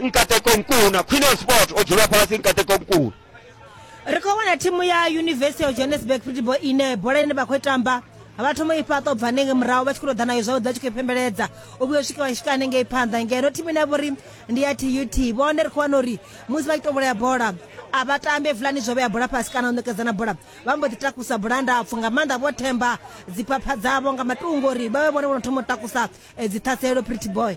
nkateko mkuna khwine ya sport o dzula fhasi nkateko mkuna ri khou wana thimu ya university of johannesburg football ine bola ine vha khou tamba vha thoma i fhaṱa u bva hanengei murahu vha tshi khou tou ḓa nayo zwavhuḓi vha tshi khou i pembeledza u vhuya u swika vha swika hanengei phanḓa ngeno thimu ine ya vhori ndi ya tut vhone ri khou wana uri musi vha tshi to vhulaya bola a vha tambe fulani zwo vhea bola fhasi kana u ṋekedzana bola vha mbo ḓi takusa bola ndapfu nga maanḓa vho themba dziphapha dzavho nga matungo uri vha vhe vhone vho no thoma u takusa eh, dziṱhaselo pretty boy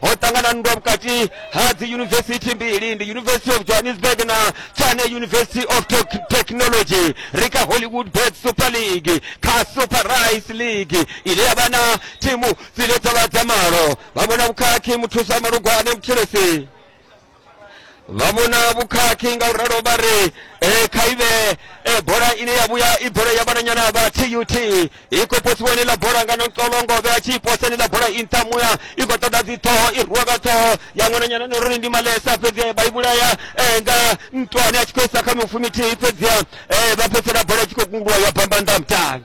ho ṱangana nndwa vhukati ha dzi yunivesithi mbili ndi university of johannesburg na chane university of Tec- technology ri kha hollywood bet super league kha super rice league ine ya vha na thimu dzine dza vha dza malo vha vhona vhukhakhi muthusa malugwane muthelesi vha vhona vhukhakhi nga u ralo vha ri eh, kha i vhe eh, bola ine ya vhuya i bola ya vhananyana vha tut i khou posiwa ineḽa bola nga nontolongo vhe a tshi i posa ineḽa bola i nṱha muya i khou ṱoḓa dzi ṱhoho i rwiwa nga ṱhoho ya ṅwananyana ni uri ndi malesa fhedzi vha i vhulaya eh, nga nṱwani a tshi khou isa kha mifumithihi fhedzi eh, vha fhedzisela bola i tshi khou kungulwa ya bamba nnḓa mutali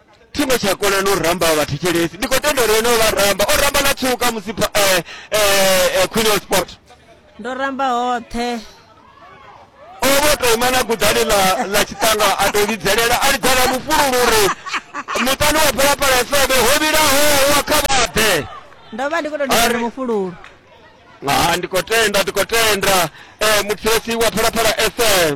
thi ngo tsha kona no ramba vhathu tshelesi ndi khou tenda uri ene o vha ramba o ramba na tshuka musi pha- eh, eh, eh, queen of sport ndo ramba hoṱhe o vho tou ima na gudani ḽa ḽa tshiṱanga a tou lidzelela a lidzela mufululu uri muṱani wa phalaphala sebe ho vhilaho wa kha vhaḓe ndo vha ndi khou tou Ari. ndivhari mufululu ha ndi khou tenda ndi khou tenda eh, muthesi wa phalaphala fm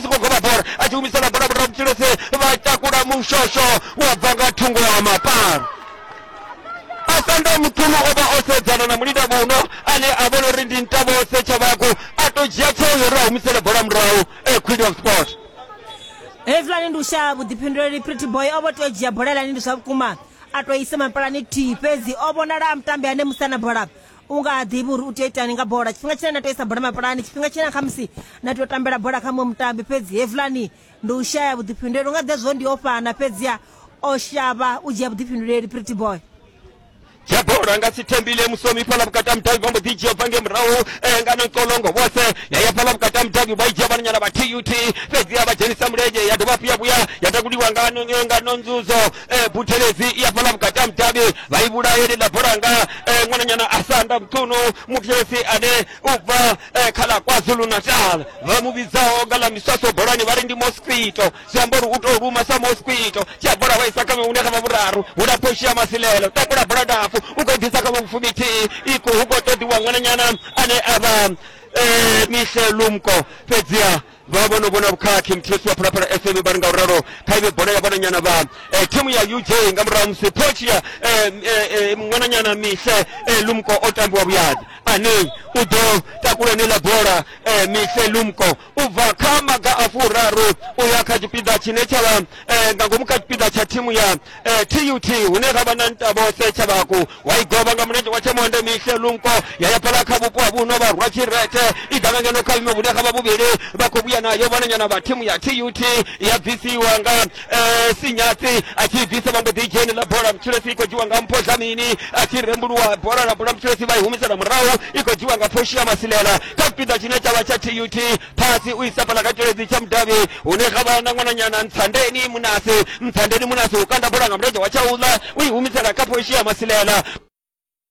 tshi khou goba bola a tshi humisela bola murahu mutshilese vha takula mushosho wa bva nga thungo ya mapara asanda muṱhulu o vha o sedzana na mulinda muno ane a vhona uri ndi ntavho setshavhaku a to dzhia tsheo yo ri a humisele bola murahu e queen of sport hezwilani ndi u shaya vhuḓifhinduleli pretty boy o vho tea u dzhia bola lani ndi zwa vhukuma a to isa mapalani thihi fhedzi o vhonala a mutambi ane musana bola u nga ha ḓivhi uri u tea itani nga bola tshifhinga tshine na tea isa bola mapulani tshifhinga tshine na khamusi na tea u tambela bola kha muṅwe mutambi fhedzi hevulani ndi u shaya vhuḓifhinduleli u nga ḓe zwo ndi o fhana fhedziha o shavha u dzhia vhuḓifhinduleli pretty boy dzhia bola nga si thembile musomi fhala vhukati ha mudavhi vha mbo ḓi dzhia bva nge murahu eh, nga nonkolongo vhose ya ya fhala vhukati ha mudavhi vha i dzhia vhananyana vha tut fhedziha vha dzhenisa mulenzhe ya dovha hafhu ya vhuya ya takuliwa nga no- nga nonzuzo eh, buthelezi i hafhaḽa vhukati ha mudavhi vha i vhulaye ḽiḽa bolanga eh, ṅwananyana a sa anda muṱhunu muthelezi ane u bva eh, kha ḽa kwazulu natal vha mu vhidzaho nga ḽa miswaso bolani vha ri ndi mosquito zwi amba uri u tou luma sa mosquito tshi a bola wa isa kha hune kha vha vhuraru hu lapho u shia masilelo takula bola ndapfu u khou ḓisa kha vha vhufuminthihi i khou hu khou ṱoḓiwa ṅwananyana ane a vha eh, mihle lumko fhedziha vha vho no vhona vhukhakhi muthihi wa phalaphala fm vha ri nga u ralo kha ive bola ya vhananyana vha eh, thimu ya uj nga murahu ha musi phochi ya eh, eh, eh, ṅwananyana mihle eh, lumko o tambiwa vhuyadzi ane u ḓo takula eneiḽa bola eh, mihle lumko u bva kha maga a furaru u ya kha tshipiḓa tshine tsha vha eh, nga ngomu kha tshipiḓa tsha thimu ya eh, tut hune ra vha na ntabo setshavhaku wa i govha nga mulenzhe wa tshemwande mihle lunko ya ya phala kha vhupo ha vhuno vha rwa tshirete i ḓa nga ngeno kha vhime vhune kha vha vhuvhili vha khou vhuya nayo vhananyana vha thimu ya tut ya bvisiwa nga eh, sinyatsi a tshi bvisa vha mbo ḓi dzheni ḽa bola mutshilesi i khou dzhiwa nga mpho dlamini a tshi rembuluwa bola ḽa bola mutshilesi vha i humisela murahu i khou dzhiwa nga phoshi ya masilela kha tshipiḓa tshine tsha vha tsha tut phasi u isa fhaḽa kha tshiledzi tsha mudavhi hune xa vha na ṅwananyana ntshandeni munasi ntshandeni munasi u kanda bola nga mulenzhe wa tsha uḽa u i humisela kha phoshi ya masilela